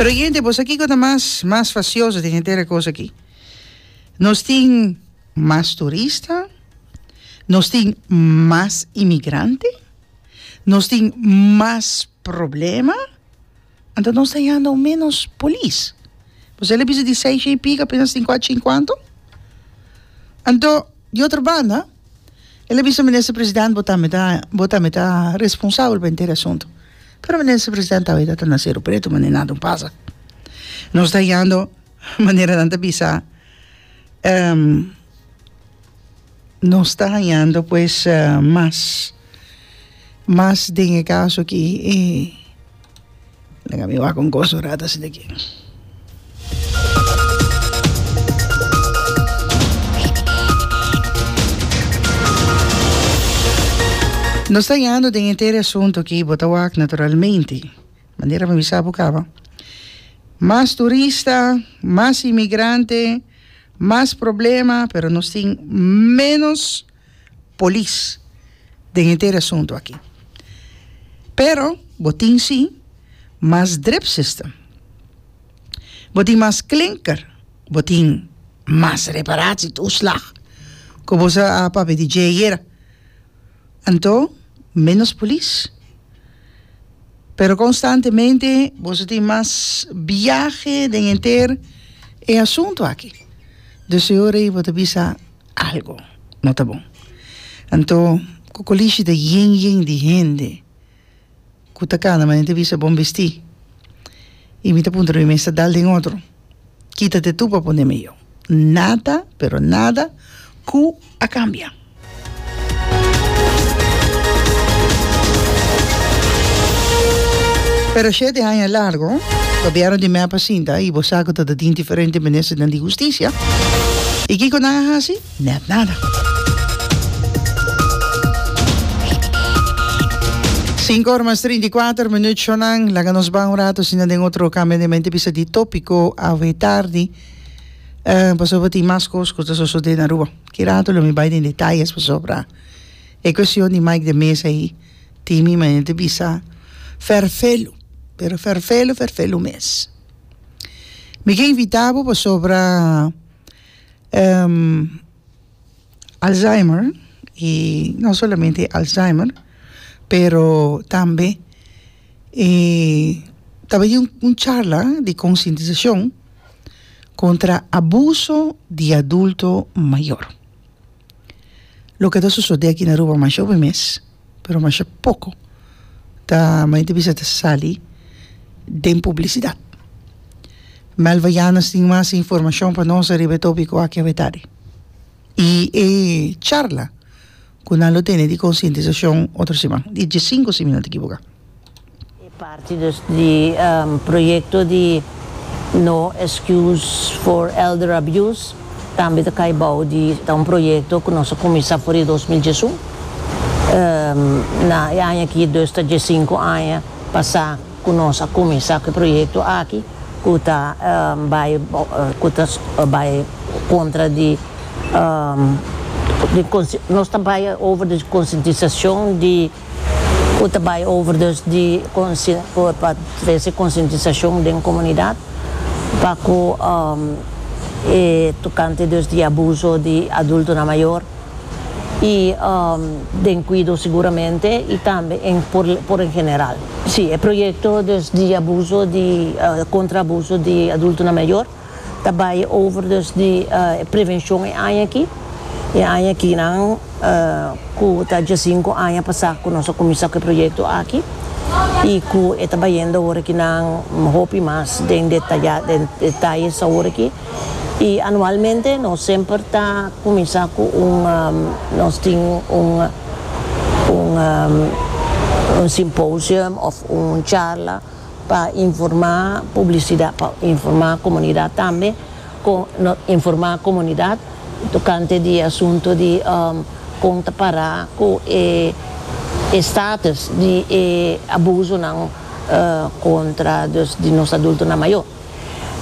Pero yende, bo sa kiko ta mas mas fasioso den henter e kos aki? Nos tin mas turista, nos tin mas inmigrante, nos tin mas problema, anto nos ta yanda un menos polis. Bo sa el a bisa di seis shei pico, apenas tin cuachi cincuanto. Anto, di otro banda. El a bisa, Minister President, bo ta mi ta, bo ta mi ta responsabel pa henter e asuntu. Pero Minister President aweita ta na Seru Pretu, mane nada no pasa. Nos ta yando manera nan ta bisa, nos ta hañando pues mas, mas den e kaso aki e. Laga mi wak un kos un rato así de aquí. Nos ta yando den e tere asunto ki bo ta wak naturalmente. Manera mi a bisa bo kaba. Mas turista, mas inmigrante, mas problema, pero nos tin menos polis den e ter asuntu aki. Pero bo tin si mas drip system, bo tin mas klinker, bo tin mas reparatsi toeslag ku bo sa a papia di dje ayera. Anto menos polis. Pero konstantemente boso tin mas biahe den e ter e asuntu aki. Dus e ora ei bo ta bisa. algu no ta bon. Anto ku kolishi ta yen yen di hende ku ta kanda manera ta bisa bon bestí i mi ta puntra mi mes ta dal den otro kita te tu pa pone mi yo. Nada pero nada ku a kambia. Pero shete aña largo, gobierno di mep a sinta y bo sa cu ta ta tin diferente ministernan di husticia. Y kico nan a haci? Net nada. Cinco ora mas trinta y cuater minuut shonan. Laga nos ban un rato asina den otro cambio de mente bisa di topico awe tardi. Uh, pasobra tin mas cos cu ta sosode na Aruba. Ki rato lo mi bai den detayes pasobra e kuestion di Mike de Mesa ei tin mi maner di bisa ferfelu, pero ferfelu ferfelu mes. Mi ke invita bo pasobra alzheimer i no solamente alzheimer pero tambe e ta baña un charla di konsientisashon. kontra abuso di adulto mayor. Loke ta sosodé aki na Aruba masha hopi mes, pero masha poko ta mi ta bisa ta sali den publisidat. Melva Yanus tin mas informashon pa nos ariba e topiko aki, awe tarde. y e charla cu nan lo tene di concientisacion otro siman, di diecinco si mi no ta ekiboka. E parti dus di proyecto di No Excuse for Elder Abuse tambe ta cay bao di ta un proyecto cu nos a cuminsa for di dos mil diesun. Na e aña aki dus ta diecinco aña pasa. ku nos a kuminsá ku e proyekto aki ku ta bai ku ta bai kontra di di nos ta bai over di konsientisashon di ku ta bai over dus di pa trese konsientisashon den komunidat pa ku e tokante dus di abuso di adultonan mayor. y den cuido seguramente y tambe en por por en general. Si, e proyecto dus di abuso di contra abuso di adultonan mayor ta bay over dus di e prevencion e aña aki, e aña aki nan cu ta diasinco aña pasa cu nos a cuminsa cu e proyecto aki y cu e ta bayendo awor aki nan hopi mas den detaya den detayes awor aki. Y anualmente nos semper ta cuminsa cu un nos tin un un un symposium of un charla pa informa publicidad pa informa comunidad tambe con nos informa comunidad tocante di asunto di con ta para cu e e status di e abusonan contra dus di nos adultonan mayor.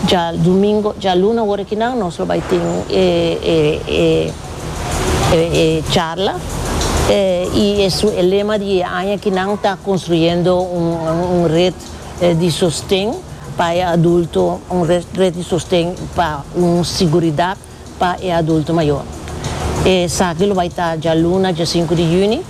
Djalumingo, djaluna ora ki nan nos lo bai tin e e charla y e su e lema di e aña ki nan ta construyendo un red di sosten pa e adulto, un red di sosten pa un siguridad pa e adulto mayor. Esaki lo bai ta djaluna dje sinku di juni,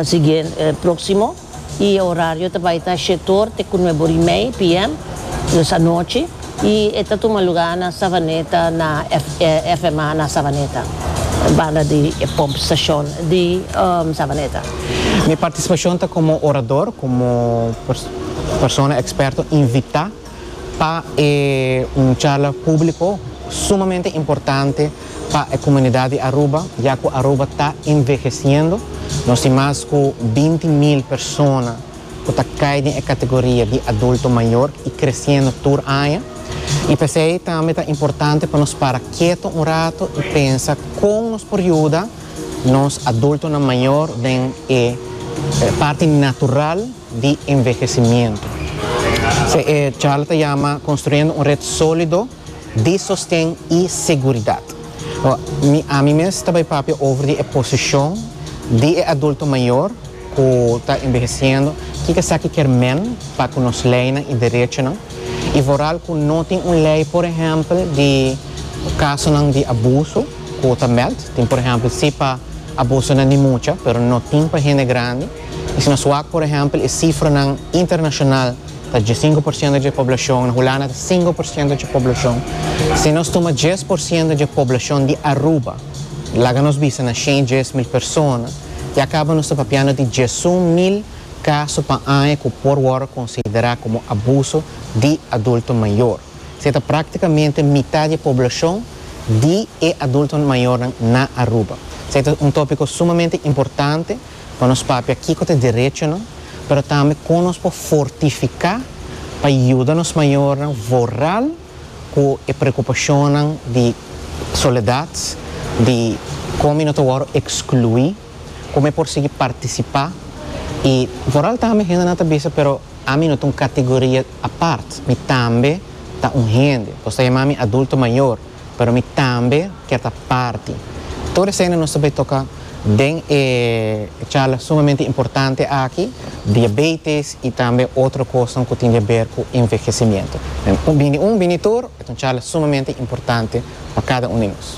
siguiente, proximo. y e horario ta bay ta shetor te cu nue bor y mey PM, dus anochi, y e ta tuma lugar na Savaneta na FMA na Savaneta, banda di e pump station di Savaneta. Mi participacion ta como orador, como persona experto invita. pa e un charla públiko sumamente importante pa e komunidat di Aruba, ya ku Aruba ta envehesiendo. Nos tin mas ku binti mil persona ku ta kai den e kategoria di adulto mayor i kresiendo tur aña. I p'esei tambe ta importante pa nos para keto un rato i pensa kon nos por yuda nos adultonan mayor den e parti natural di envehesimiento. Se e charla ta yama Construyendo un red solido di sosten y seguridad. Mi, ami mes ta bai papia over di e posicion di e adulto mayor cu ta enveheciendo, kico esaki kier men pa cu nos leynan y derechonan y vooral cu no tin un ley por ehempel di casonan di abuso cu ta meld. Tin por ehempel si pa abusonan di mucha pero no tin pa hende grandi. Asina suak, por ehèmpel, e sifranan internashonal ta djesienku por siento dje poblashon, na Hulanda ta sinku por siento dje poblashon. Si nos tuma djes por siento dje poblashon di Aruba, laga nos bisa na shen djes mil persona, ya kaba nos ta papiando di djesun mil kaso pa aña ku por wòrdu konsiderá komo abuso di adulto mayor. Esei ta práktikamente mitá di e poblashon di e adulto mayornan na Aruba. Esei ta un tópiko sumamente importante. pa nos papia kiko ta e derechonan, pero tambe kon nos por fortifiká pa yuda nos mayornan vorral ku e preokupashonnan di soledat, di kon mi no ta wòrdu ekskluí, kon mi por sigui partisipá i vorral tambe hendenan ta bisa pero ami no ta un kategoria apart, mi tambe ta un hende, nos ta yamá mi adulto mayor. Pero mi tambe kier ta parti. Tur esende nos ta bay toca den e charla sumamente importante aki, diabetes y tambe otro cosnan cu tin di haber cu envehecimiento. Den un bini tur, e ta un charla sumamente importante pa cada un di nos.